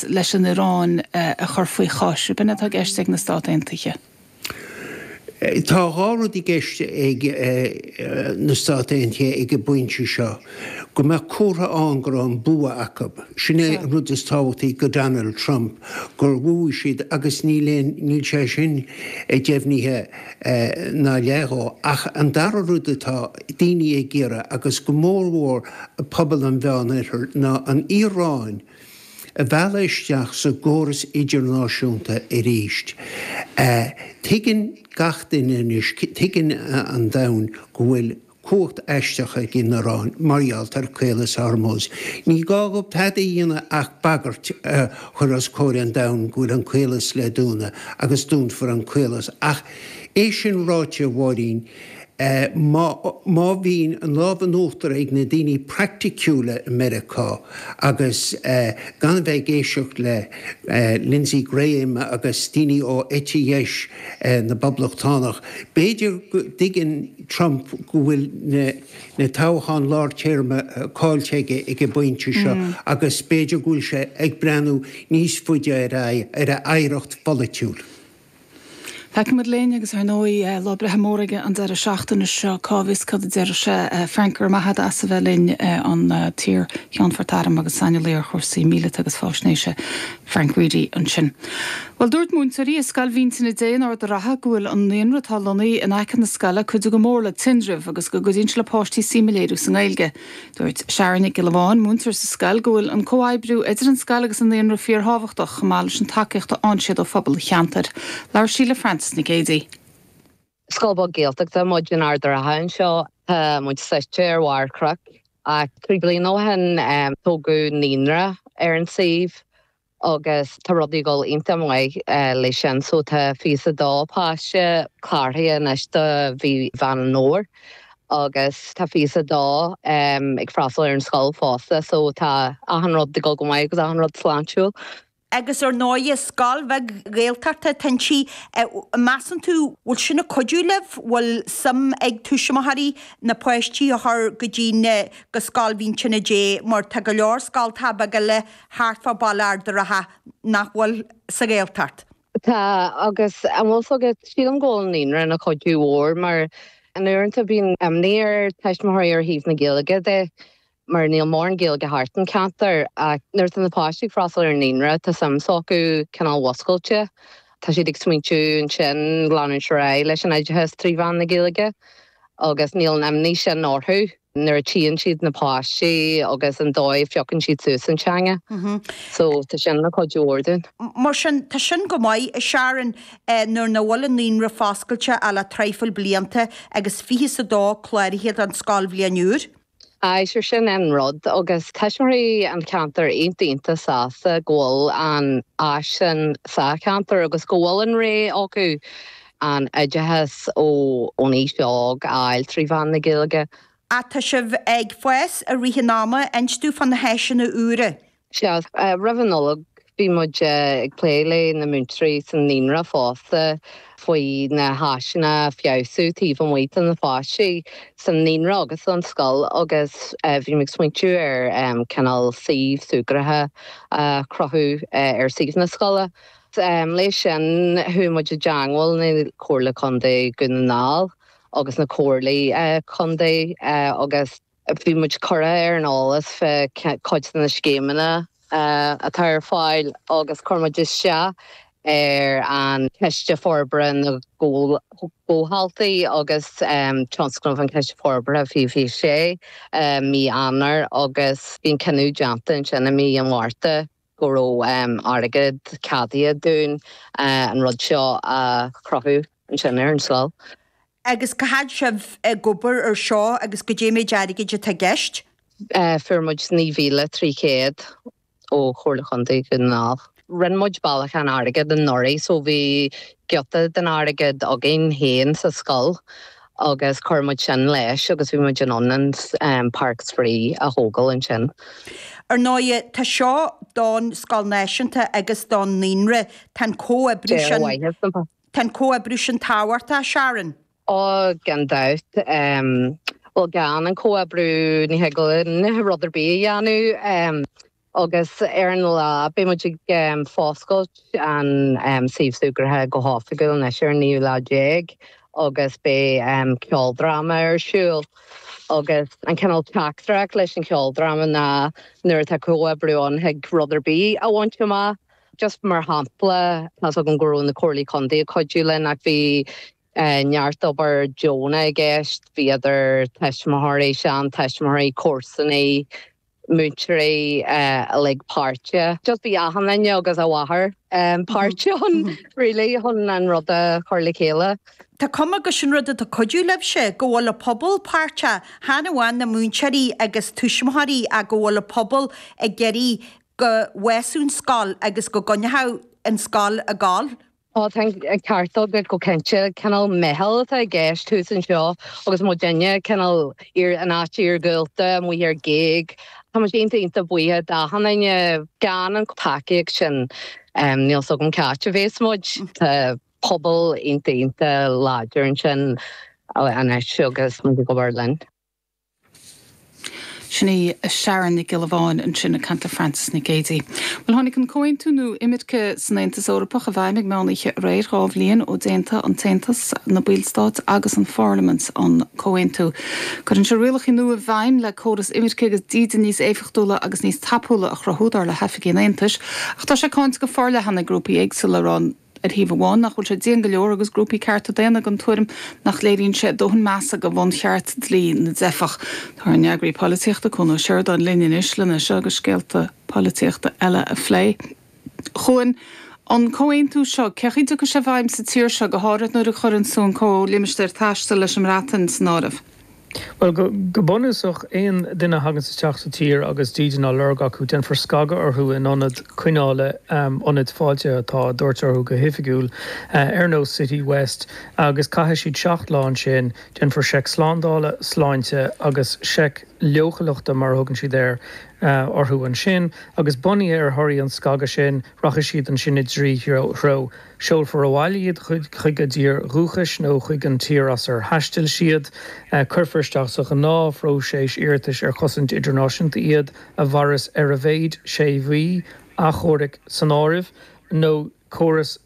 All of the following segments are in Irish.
leis an Iaráin a chur faoi chois, rud atá i gceist ag na Stáit Aontaithe. Tá dhá rud i gceist ag na Stáit Aontaithe ag an bpointe seo, go mbeadh comhartha ann go raibh an bua acu, sin é an rud is tábhachtaí do Donald Trump, gur bhuaigh siad agus níl aon, níl sé sin deimhnithe ná leath de. Ach an dara rud atá daoine ag iarraidh, agus go mór mhór pobal an Mheánoirthir, ná an Iaráin, a mhealladh isteach sa gcóras idirnáisiúnta arís. Tuigeann gach duine anois, tuigeann an domhan go bhfuil cumhacht aisteach ag an Iaráin mar gheall ar Chaolas Hormuz. Ní gá dhóibh tada a dhéanamh ach bagairt a chur os comhair an domhain go bhfuil an caolas le dúnadh agus dúnfar an caolas ach é sin ráite, a Mháirín, Má bhíonn an lámh in uachtar ag na daoine praiticiúla i Meiriceá agus gan a bheith ag éisteacht le Lindsey Graham agus daoine ó eite dheis na bPoblachtánach, b'fhéidir go dtuigeann Trump go bhfuil na toghcháin lár-téarma caillte aige ag an bpointe seo agus b'fhéidir go bhfuil sé ag breathnú níos faide ar a oidhreacht pholaitiúil. Feicfimid linn, agus ar ndóigh lá breithe mór aige an deireadh seachtaine seo, cá bhfios cad a déarfadh sé. Frank, go raibh maith a't as a bheith linn an t-iarCheannfort Airm agus saineolaí ar chúrsaí míleata agus fáisnéise, Frank Reidy ansin. Bhuel, dúirt múinteoirí i Scoil Mhín Tine Dé in Ard an Rátha go bhfuil an naíonra atá lonnaithe in aice na scoile ag cuidiú go mór le tinreamh agus go gcuidíonn sé le páistí suim a léiriú sa nGaeilge. Dúirt Sharon Nic Giolla Bháin, múinteoir sa scoil, go bhfuil an comhoibriú idir an scoil agus an naíonra fíorthábhachtach, chomh maith leis an tacaíocht a fhaigheann siad ó phobal an cheantair. Labhair sí le Frances Nic Géadaigh. Scoil bheag Gaeltachta muid in Ard an Rátha anseo. Tá muid suite ar bharr cnoic ach trí bliana ó shin tógadh naíonra ar an suíomh. agus tá rudaí ag dul iontach maith leis sin so tá fiche is a 2 páiste cláraithe anois do mhí Mheán an Fhómhair agus tá fiche is a 2 ag freastal ar an scoil fosta so tá achan rud ag dul go maith agus achan rud sláintiúil. agus ar ndóighe scoil bheag Ghaeltachta tá inti, measann tú bhfuil sin ag cuidiú libh, bhfuil suim ag tuismitheoirí na páistí a chur go dtí na, go scoil Mhín Tine Dé mar tá go leor scoltacha beaga eile, thart fá bhaile Ard an Rátha nach bhfuil sa Ghaeltacht. Tá, agus an bhfuil 's agat, sílim go bhfuil an naíonra ina chuidiú mór mar in amanta, uaireanta bíonn imní ar tuismitheoirí ar thaobh na Gaeilge de mar níl mórán Gaeilge thart an ceantar ach nuair atá na páistí ag freastal ar an naíonra tá suim s'acu cineál múscailte, tá siad ag smaointiú ansin leanúint ar aghaidh leis an oideachas trí mheán na Gaeilge agus níl an imní sin orthu. nuair a tchíonn siad na páistí agus an dóigh a phiocann siad suas an teanga. So, tá sin ina chuidiú mór dúinn. Mar sin, tá sin go maith, a Sharon, nuair nach bhfuil an naíonra foscailte ach le traidhfil blianta agus fiche 's a dó cláraithe don scoilbhliain úr. Aye, sure sin é an rud, agus tuismitheoirí an cheantair iontach iontach sásta go bhfuil an áis sin sa cheantar agus go bhfuil an rogha acu an oideachas ón aois óg a fháil trí mheán na Gaeilge. Tá sibh ag fás i rith an ama, inis dúinn fá na háiseanna úra. Sea. Roimh an Nollaig bhí muid ag plé leis na múinteoirí sa naíonra fosta faoi na háiseanna a fheabhsú taobh amuigh do na páistí sa naíonra agus an scoil agus bhí mé ag smaointiú ar cineál suíomh súgartha a chruthú ar suíomh na scoile. Leis sin, chuaigh muid i dteangmháil le Comhairle Contae Dhún na nGall agus na Comhairleoirí Contae agus bhí muid curtha ar an eolas faoi cuid de na scéimeanna atá ar fáil agus chuir muid isteach ar an Chiste Forbartha na gComhaltaí agus tionscnamh an Chiste Forbartha fiche fiche sé, mí Eanáir, agus bíonn cinneadh déanta ansin i mí an Mhárta. go raibh airgead ceadaithe dúinn an rud seo a chruthú ansin ar an scoil. Agus cá fhad sibh ag obair ar seo agus goidé an méid airgid atá i gceist? Fuair muid 9,300 ó Chomhairle Chontae Dhún na nGall. Rinne muid bailiúchán airgid anuraidh so bhí giota den airgead againn féin sa scoil. agus chuir muid sin leis agus bhí muid in ann an páirc spraoi a thógáil ansin. Ar ndóigh, tá seo don scoil náisiúnta agus don naíonra, tá an comhoibriú sin, tá an comhoibriú sin tábhachtach, a Sharon. Ó, gan dabht. Bhuel, gan an comhoibriú, ní thig linn rud ar bith a dhéanamh. Agus ar an lá, beidh muid ag foscailt an suíomh súgartha go hoifigiúil anois ar an naoú lá déag agus beidh ceoldráma ar siúl. Agus an cineál teachtaireacht leis an cheoldráma ná nuair atá comhoibriú ann thig rud ar bith a bhaint amach. Just mar shampla, tá's agam go raibh na Comhairleoirí Contae ag cuidiú linn ach bhí neart obair deonach i gceist, bhí idir tuismitheoirí, seantuismitheoirí, comharsanaigh, múinteoirí uilig páirteach. Just bhí achan duine agus a mháthair páirteach ann really chun an rud a chur le chéile. Tá cuma gur sin rud atá cuidiú libhse, go bhfuil an pobal páirteach, chan amháin na múinteoirí agus tuismitheoirí ach go bhfuil an pobal ag iarraidh go bhfeabhsódh an scoil agus go gcoinneodh an scoil ag gabháil. Tá an ceart agat go cinnte. Cineál meitheal atá i gceist thuas anseo agus mo dhuine, cineál an áit iargúlta amuigh ar ghéag. Tá muid iontach iontach buíoch d'achan duine. Gan an tacaíocht sin níl 's agam cá háit a bheas muid. Tá pobal iontach iontach láidir ansin anois agus muid ag obair linn. Sin í Sharon Nic Giolla Bháin ansin ag caint le Frances Nic Géadaigh. Bhuel, tháinig an comhaontú nua imirce san Aontas Eorpach i bhfeidhm ag meán oíche aréir, dhá bhliain ó d'aontaigh an tAontas, na ballstáit agus an pharlaimint an comhaontú. Cuireann sé rialacha nua i bhfeidhm le córas imirce agus dídean níos éifeachtúla agus níos tapúla a chruthú, dar le hoifigigh an Aontais, ach tá sé cáinte go forleathan ag grúpaí éagsúla ag rá ar thaobh amháin, nach bhfuil sé dian go leor agus grúpaí cearta daonna den tuairim nach léiríonn sé dóthain measa do bhuncheart dlí na dteifeach. Tá ár n-eagraí polaitíochta, Cuan Ó Seireadáin, linn anois lena seo agus scéalta polaitíochta eile a phlé. A Chuain, an comhaontú seo, cén chaoi a dtiocfaidh sé i bhfeidhm sa tír seo, go háirithe nuair a chuireanns tú an Comhlimistéir Taistil leis an mBreatain san áireamh? Bhuel, go bunúsach, aon duine a thaganns isteach sa tír agus dídean á lorg acu, déanfar scagadh orthu in ionad coinneála, ionaid fáiltithe atá á dtabhairt orthu go hoifigiúil, ar nós City West, agus caithfidh siad seacht lá ansin. Déanfar seic slándála, sláinte, agus seic leochaileachta, mar a thugann siad air, orthu ansin, agus bunaithe ar thorthaí an scagadh sin, Rachaidh siad ansin i dtrí threo. Seolfar abhaile iad chuig a dtír dhúchais nó chuig an tír as ar thaistil siad. Cuirfear isteach sa ghnáthphróiseas iarratais ar chosaint idirnáisiúnta iad, a mhaireas ar a mhéad sé mhí, achomhairc san áireamh, nó córas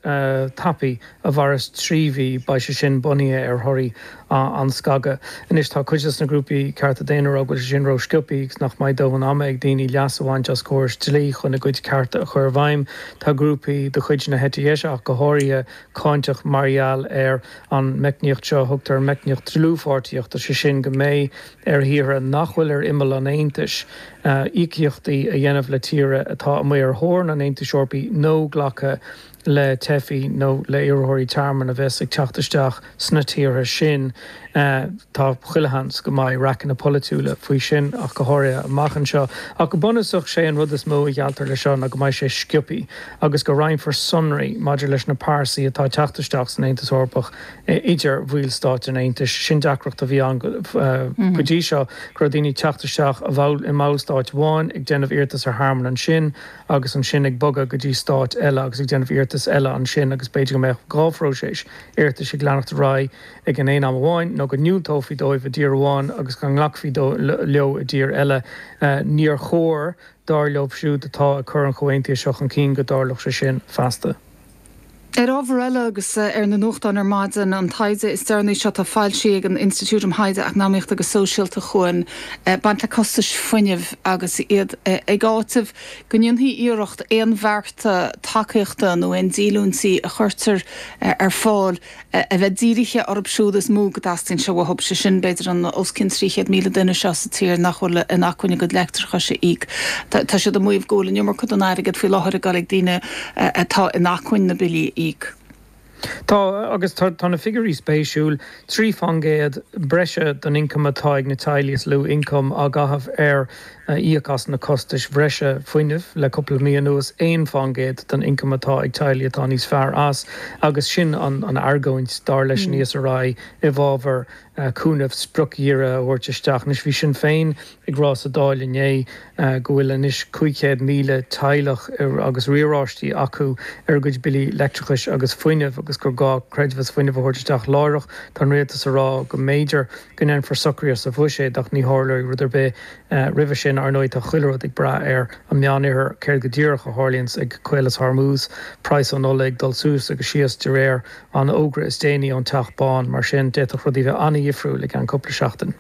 tapaidh a mhaireas trí mhí, beidh sé sin bunaithe ar thorthaí an scagadh. Anois, tá cuid de na grúpaí cearta daonna ag rá go bhfuil sé sin rósciobthaí agus nach mbeidh dóthain ama ag daoine leas a bhaint as córais dlí chun a gcuid cearta a chur i bhfeidhm. Tá grúpaí de chuid na heite deise ach go háirithe cáinteach mar gheall ar an meicníocht seo a thugtar an meicníocht dlúthpháirtíochta, sé sin go mbeidh ar thíortha nach bhfuil ar imeall an Aontais íocaíochtaí a dhéanamh le tíortha atá amuigh ar theorainn an Aontais Eorpaigh nó glacadh le teifigh nó le iarrthóirí tearmainn a bheas ag teacht isteach sna tíortha sin. Tá chuile sheans go mbeidh raiceanna polaitiúla faoi sin ach go háirithe amach anseo. Ach go bunúsach sé an rud is mó a ghealltar le seo ná go mbeidh sé sciobthaí agus go roinnfear sonraí maidir leis na pearsana atá ag teacht isteach san Aontas Eorpach idir bhallstáit an Aontais. Sin deacracht a bhí ann go dtí seo go raibh daoine ag teacht isteach i mballstát amháin ag déanamh iarratas ar thearmann ansin agus ansin ag bogadh go dtí stát eile agus ag déanamh iarratas eile ansin agus b'fhéidir go mbeadh dhá phróiseas iarratais ag leanacht ar aghaidh ag an aon am amháin nó go ndiúltófaí dóibh i dtír amháin agus go nglacfaí leo i dtír eile. Níor chóir, dar leo siúd atá ag cur an chomhaontaithe seo chun cinn, go dtarlódh sé sin feasta. Ar ábhar eile, agus ar na nuachtáin ar maidin, an taighde is deireanaí seo atá foilsithe ag an Institiúid um Thaighde Eacnamaíochta agus Sóisialta chugainn, baint le costais fuinnimh agus iad ag áiteamh go ndéanfaí iarracht aon bhearta tacaíochta nó aon díolúintí a chuirtear ar fáil a bheith dírithe orthu siúd is mó go dteastaíonn sé uathu, sé sin, b'fhéidir, an os cionn 300,000 duine seo sa tír nach bhfuil in acmhainn a gcuid leictreachais a íoc. Tá siad ag maíomh go bhfuil an iomarca den airgead faoi láthair ag dul ag daoine atá in acmhainn na billí a íoc. Tá, agus tá na figiúirí spéisiúil, trí fán gcéad breise den ioncam atá ag na teaghlaigh is lú ioncam á chaitheamh ar íoc as na costais bhreise fuinnimh le cúpla mí anuas, aon fán gcéad den ioncam atá ag teaghlaigh atá níos fearr as, agus sin an argóint, dar leis an ESRI, i bhfábhar cúnamh spriocdhírithe a thabhairt isteach. Anois, bhí Sinn Féin ag rá sa Dáil inné go bhfuil anois 500,000 teaghlach agus riaráistí acu ar a gcuid billí leictreachais agus fuinnimh agus gur gá creidmheas fuinnimh a thabhairt isteach láithreach. Tá an Rialtas ag rá go mb'fhéidir. go ndéanfar socruithe sa bhuiséad ach ní tharlóidh rud ar bith roimhe sin. Ar ndóigh, tá chuile rud ag brath ar an Meánoirthear, céard go díreach a tharlaíonns ag Caolas Hormuz, praghas an ola ag dul suas agus síos de réir an fhógra is déanaí ón Teach Bán, mar sin d'fhéadfadh rudaí bheith an-dhifriúil i gceann cúpla seachtain.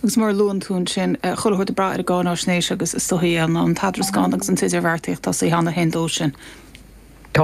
Agus mar a luann tú ansin, chuile shórt ag brath ar an gcáináisnéis agus is dóigh an t-eadarascán agus an t-idirbheartaíocht atá saothánna féin dó sin.